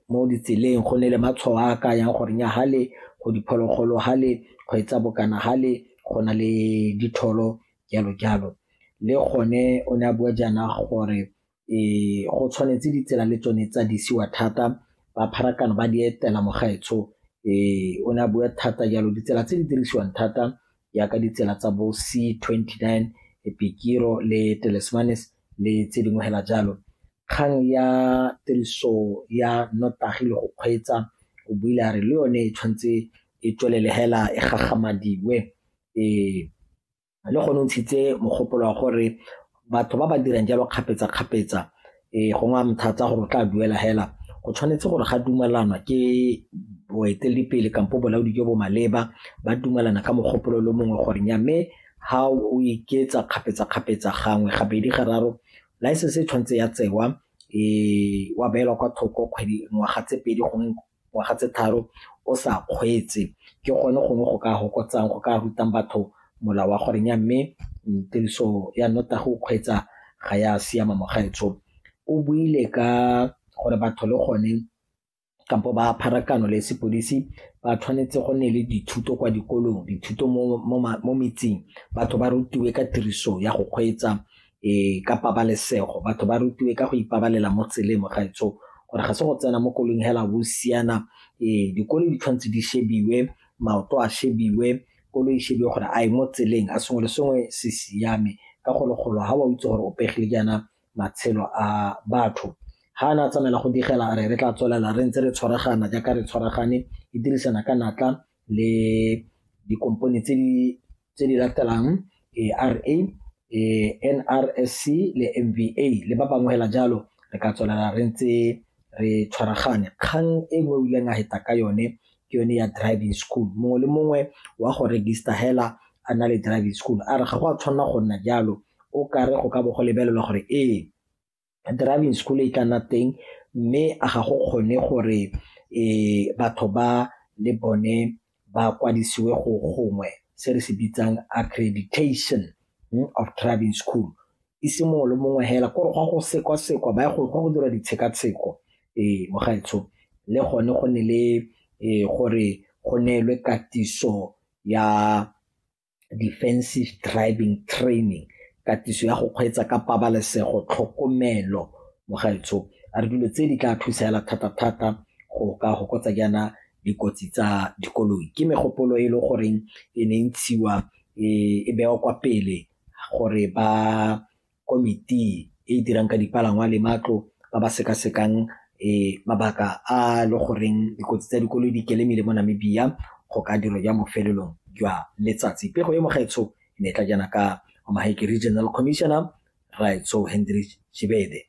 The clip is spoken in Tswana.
mo ditseleng go nne le matshwao a ka yang gore nnyaa hale go diphologolo, hale kgweetsa bokana, hale go na le ditholo jalo jalo. Le gone o ne a bua jaana gore go tshwanetse ditsela le tsone tsa di isiwa thata ba pharakano ba di etela mo gaetsho o ne a bua thata jalo ditsela tse di dirisiwang thata jaaka ditsela tsa bo C twenty-nine, Pikiro le . le tse dingwe hela jalo kgang ya tiriso ya notagi le go kgweetsa o buile a re le yone e tshwanetse e tswelele hela e gagamadiwe ee le gone o ntshitse mogopolo wa gore batho ba ba dirang jalo kgapetsa-kgapetsa um gongwe a mothatsa gore o tla duela hela go tshwanetse gore ga dumelanwa ke boeteledipele kampo bolaodi jo bo maleba ba dumelana ka mogopolo le mongwe goreng ya mme ha o iketsa kgapetsa-kgapetsa gangwe gabedi gararo license e tshwanetse ya tsewa um wa beelwa kwa thoko kgwedi ngwaga tse pedi gongwe ngwaga tse tharo o sa kgweetse ke gone gongwe go ka gokotsang go ka rutang batho mola wa goreng ya mme tiriso ya notago o kgweetsa ga ya siama mogaetsho o buile ka gore batho le gone kampo ba pharakano le sepodisi ba tshwanetse go nne le dithuto kwa dikolong dithuto mo metseng batho ba rutiwe ka tiriso ya go kgweetsa um ka pabalesego batho ba rutiwe ka go ipabalela mo tseleng mogaetso gore ga se go tsena mo kolong hela bo siana um dikolo di tshwanetse di shebiwe maoto a shebiwe kolo e shebiwe gore a e mo tseleng a sengwe le sengwe se siame ka gologolo ga wa itse gore o pegile jaana matshelo a batho. Ga a ne a tsamaela go digela a re re tla tswelela re ntse re tshwaragana jaaka re tshwaragane e dirisana ka natla le dikompone tse di latelang ARA, NRSC le MVA le ba bangwe hela jalo re ka tswelela re ntse re tshwaragane. Kgang e nngwe o ileng a heta ka yone ke yone ya driving school mongwe le mongwe wa go register hela a na le driving school a re ga go a tshwanela go nna jalo o kare go ka bo go lebelelwa gore ee driving school e tla nna teng mme a ga go kgone gore um batho ba le bone ba kwadisiwe go gongwe se re se bitsang accreditation hmm, of driving school e simolole mongwe hela kore gwa go sekwasekwa ba go go dira ditshekatsheko um mogaetsho le gone go ne le um gore go neelwe katiso ya defensive driving training katiso ya go kgweetsa ka pabalesego tlhokomelo mogaetsho a re dilo tse di tla thusa hela thata-thata go ka gokotsa jaana dikotsi tsa dikoloi ke megopolo e le goreng e ne ntshiwa e bewa kwa pele gore ba komiti e e dirang ka dipalangwa le matlo ba ba sekasekang um mabaka a le goreng dikotsi tsa dikoloi di kelemile mo Namibia go ka dirwa jwa bofelelong jwa letsatsi pego e mogaetsho e ne tla jana ka Maheke Regional Commissioner Raetsho Hendrich Shibede.